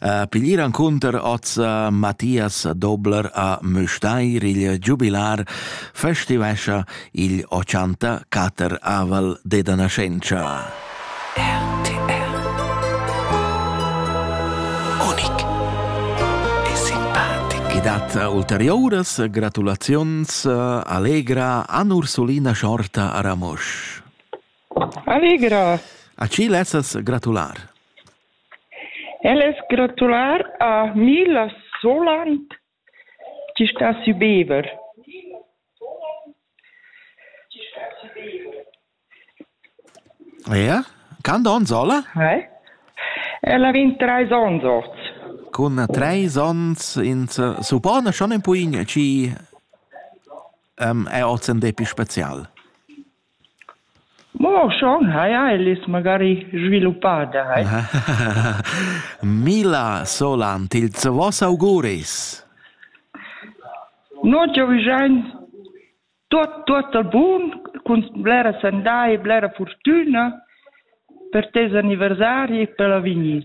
Uh, piglier encunter oz uh, Matthias Dobler a Müstair il giubilar festivescha il 84 aval deda nascenza. RTR Unic e simpatic I dat ulteriores gratulazions uh, allegra an Ursulina Schorta a Ramosch. Allegra! A ci lezzas gratular. Ellas gratular a Mila Soland chi sta sü Bever. Ia? Quant ons ho la? Eh? Ella vegn treis ons oz. Cun treis ons ins suppona schon in puign chi um, è oz in depi spezial. Mo schon haja ellas magari sviluppà dai. Mila solant ils voss auguris. No giovigiain tuot tuotta bun cun blera sandà e blera furtüna per tes anniversari e per l'avegnir.